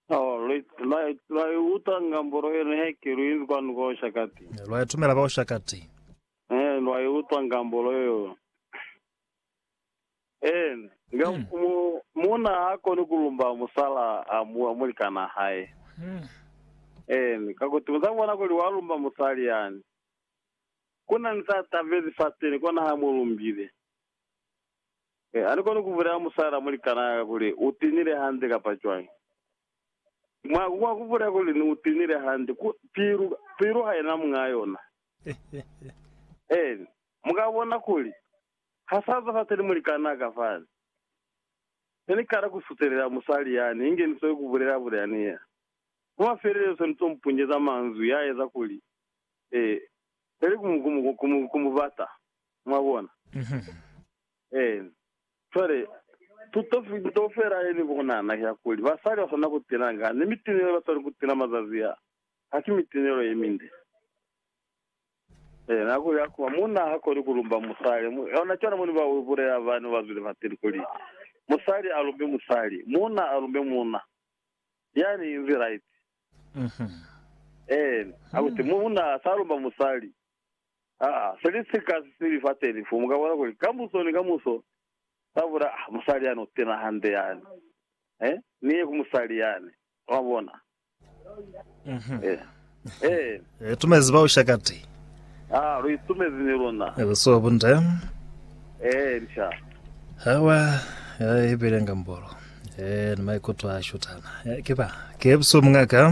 Oh, lwa, lwa, lwa i utwa ngambo lwa yona heke lu inzi kwanu kwa Ushakati. Lwa itumela kwa Ushakati. Eh, lwa i utwa ngambo lwa yo. Eh, nga, Mm. mu, muna ha koni ku lumba musala a mu, a mulikana hae. Mm. Eh, kakuti muza bona kuli wa lumba musali yani. Kuna ni sa tabezi fateni kona ha mu lumbile. Mi ani koni kubulela musala muli kanaka kuli u tinile hande kapa cwañi. Mwa, mwa kubulela kuli ni u tinile hande, ku, pilu, pilu haina muñaa yona. Eeni. Muka bona kuli Ha sa zwa fateni muli kanaka fani. Ne ni kala ku sutelela musali yani, inge ni soko kubulela kuli ani ya. Mwa mafelelezo ni to mu punyeza manzwi ya eza kuli, E, peli ku mu, ku mu, ku mu, ku mu bata. Mwabona? Ee. Cwale, tuto, tuto fela yeni ku nahana ya kuli basali ba swanela ku tena nga, ni mitinelo ye ba swanela ku tena mazazi a, ha ki mitinelo ye minde. Ee, nako ya kuba munna ha koni ku lumba musali. Mu, ona cwale mo ni ba bulela bani ba zwile fateni kuli, Musali a lumbi musali, munna a lumbi munna. Yani inzi right. Ee, akuti, munna sa lumba musali. Aa, se li si kasi se li fa telifu, mu ka bona kuli kamuso ni kamuso sa bula, Ah, musali yani u tena hande yani. He, ni ye ku musali yani. Mwa bona? He. He. Lu itumezi bao shakati. Aa, lu itumezi ni luna. Lu si wa bunde. He, ni sha. Hawa, he, ibile ngambolo. He, ni maikuto a shutana. He, ki ba. Ki ebusu, muñaka.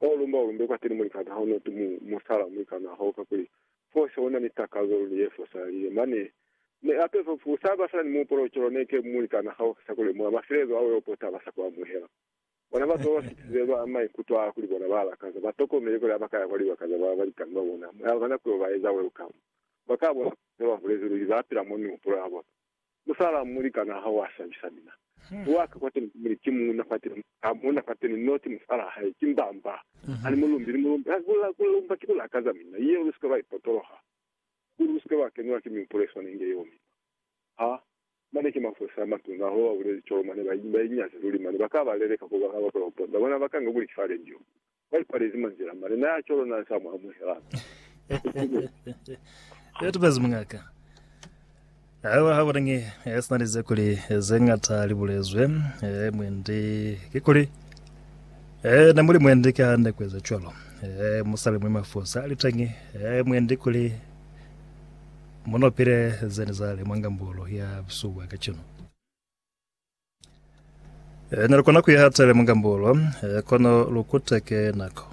Fa ulumba ulumbe kwateni mulikana ha unati mu musala mulikana hao kakuli fose una ni takazo luli ye fosalile. Mane ne ape fa ku saba sina ni muupolo cwalo ne ke mulikana hao sa ku lemuha maselezo ao yo po taba sa ku amuhela. Bona bato baba fitize ba maikuto a kuli bona ba lakaza ba tokomele kuli ha ba ka ya kwa libaka za ba balikani ba bona mo yaba na ku yo ba eza welcome, ba ka bona fo ne ba bulezi luli ba pila mo mihupulo ya bona. Musala mulikana ha wa sabisa mina. Wa ka kwateni kumuli ki muuna kwateni, ha muuna kwateni no ki musala hae, ki mbamba. Ani mulumbi ni mulumbi. Ha ku la, ku lumba ki ku lakaza mina. Yeo lu si ka lwa ipotoloha. Kuli lu si ka lwa kenelwa ki mihupulo ye swana inge yeo mina. Ha, mane ki mafosi a matuna, ho ba buleli cwalo, mane ba, ba inyazi luli mane. Ba ka ba leleka kuli ba ka ba pula ku ponda. Bona, ba ka nga kuli ki fa radio. Kwa ipalezi mwa nzila, malena ya cwalo na sa mu amuhela. Ya tupezi mungaka. Awa ha bonangi e sina lize kuli ze ngata li bulezwe e mwendi ki kuli e na muli mwendi ka hande kweza cwalo e musali mwe mafosa litengi e mwendi kuli munopile zeni zale mwa ngambolo ya busuwa kacenu. E, ne lu kona ku iha tele mugambulo, e, kono lu kuteke nako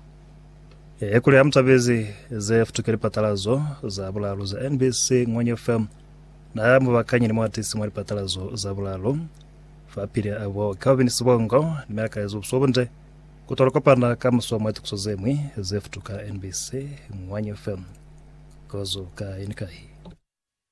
ye kuli ha mu tabezi ze futuke lipatalazo za bulalu za NBC Ngwanya FM. Na mu bakanye ni muatisi mwa lipatalazo za bulalu fa pili a bo Calvin Sibongo, ni mi akalezi bubuso bunde ku tola kopana ka muso mwa tukiso ze ñwi ze futuka NBC Ngwanya FM. Kozo kai ni kai.